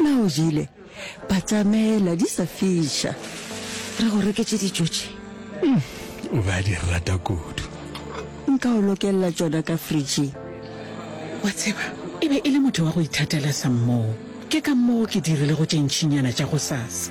Na o jile? Batamela di sa fiša. Re go reketše dijo tše. Hmm, o ba di rata kudu. Nka o lokella tšona ka fridging. Wa tseba, e be e le motho wa go ithatela sa mmoo. Ke ka moo ke dirilego tše ntšinyana tša gosasa.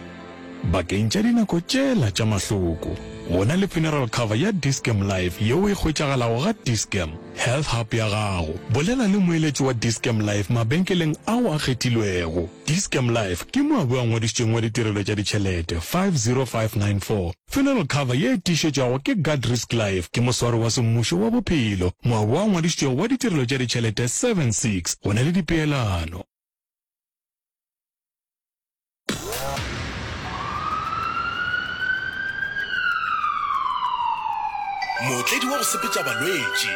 Bakeng tša dinako tšela tša mahloko, go na le funeral cover ya Dis-Chem Life yeo e hwetšagalago ga Dis-Chem Health Hub ya gago. Bolela le moeletši wa Dis-Chem Life mabenkeleng ao a kgethilwego. Dis-Chem Life ke mo a bo a ngwadišitšweng wa ditirelo tša ditšhelete 50594. Funeral cover ye e tiišetšwago ke Guard Risk Life ke moswari wa semmušo wa bophelo mo a bo a ngwadišitšwego wa ditirelo tša ditšhelete 76. Go na le dipeelano. mootledi wa go sepetša balwetši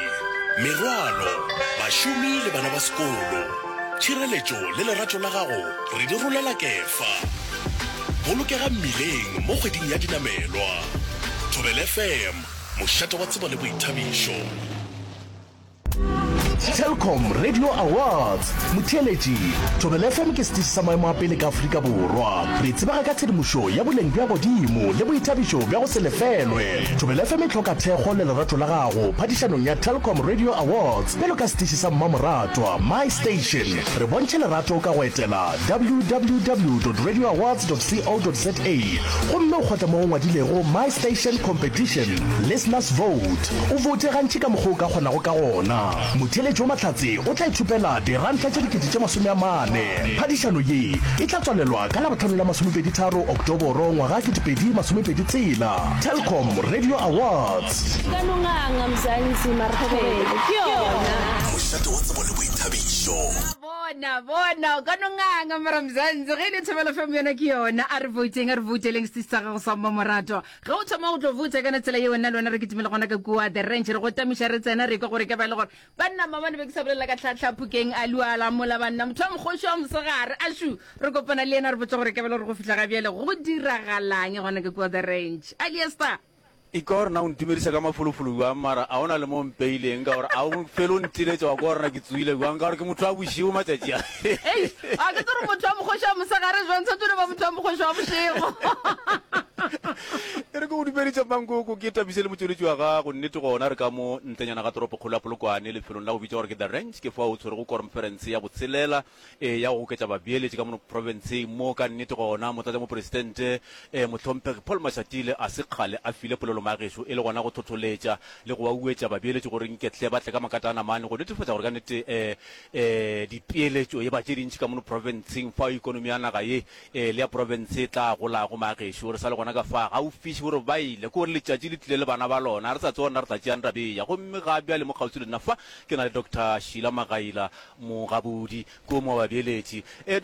merwalo bašomi le bana ba sekolo tšhireletšo le lerato la gago re di rolela kefa bolokega mmileng mo kgweding ya dinamelwa thobel fm mošate wa tsebo le boithabišo Telkom Radio Awards motheeletši Thobela FM ke setiši sa maemo a pele ka Afrika Borwa. Re tsebaga ka tshedimošo ya boleng bja godimo le boithabišo bja go se lefelwe. Thobela FM e hloka thekgo le lerato la gago phadišanong ya Telkom Radio Awards bjalo ka setiši sa mmamoratwa My Station. Re bontšhe lerato ka go etela www.radioawards.co.za gomme o kgotla mo go ngwadilego My Station Competition Listeners Vote. O voute gantši ka mokgwa o ka kgonago ka gona. Motheeletši wa Mahlatse o tla ithopela diranta tše dikete tše masome a mane. Phadišano ye e tla tswalelwa ka Labohlano la masomepedi tharo Oktoboro ngwaga ketepedi masomepedi tshela. Telkom Radio Awards. Kanonganga, Mzansi, Marhobele ke yona. Mošate wa tsebo le boithabišo. Wa bona, bona, Kanonganga, Mara Mzansi, ge e le Thobela FM yona ke yona. A re vouteng, a re vouteleng stage sa gago sa Mmamoratwa. Ge o thoma go tlo botsa ka na tsela yeo nna le wena re kitimele gona ka kua the ranch re go tamiša re tsena re kwa gore ka ba e le gore banna mabane be ke sa bolelela ka tlhatlhaphokeng a luala mola banna motho wa mokgoši wa mosegare a shu re kopana le yena re botsa gore ka ba e le gore go fihla ga bjale go diragalang gona ka kua the ranch aliester e ka gore na o ntumedisa ka mafolofolo jwang mara a ona le mo mpeileng ka gore a o fele o ntiletša wa ka gorena ke tsoile jwang ka gore ke motho wa bošego matšatši a Eish, a ke tsere motho wa mokgoši wa mosegare jwang tshwantse le ba motho wa mokgoši wa bošego e re ke go dumeditša mankoko ke tabise le motšweletši wa gago nnete gona re ka mo ntlenyana ga toropo kgolo ya polokwane lefelong la go bitša gore ke the ranch ke fa o tshwere go kormferense ya botshelela e ya go goketša babeeletši ka mono provinceng mo ka nnete gona motlatša moporesitente e mohlomphegi paul mashatile a se kgale a file polelo magešo e le gona go tlhotlholetša le go wa uetša babeeletši gore nketle ba tle ka makatana mane go netefatša gore ka nnete um e, dipeeletšo ye ba tše dintši ka mono profenseng fao ekonomi ya naga ye e, le ya profense e tla golago. Maagešo, re sa le gona ka fa gaufiši gore ba ile, ke gore letšatši le tlile le bana ba lona. Ga re sa tseba rena re tla tšeang taba e ya. Gomme ga bjale mo kgauswi le nna fa, ke na le Doctor Sheila Magaila, mogabodi, ke o mongwe wa babeeletši. E, Doctor.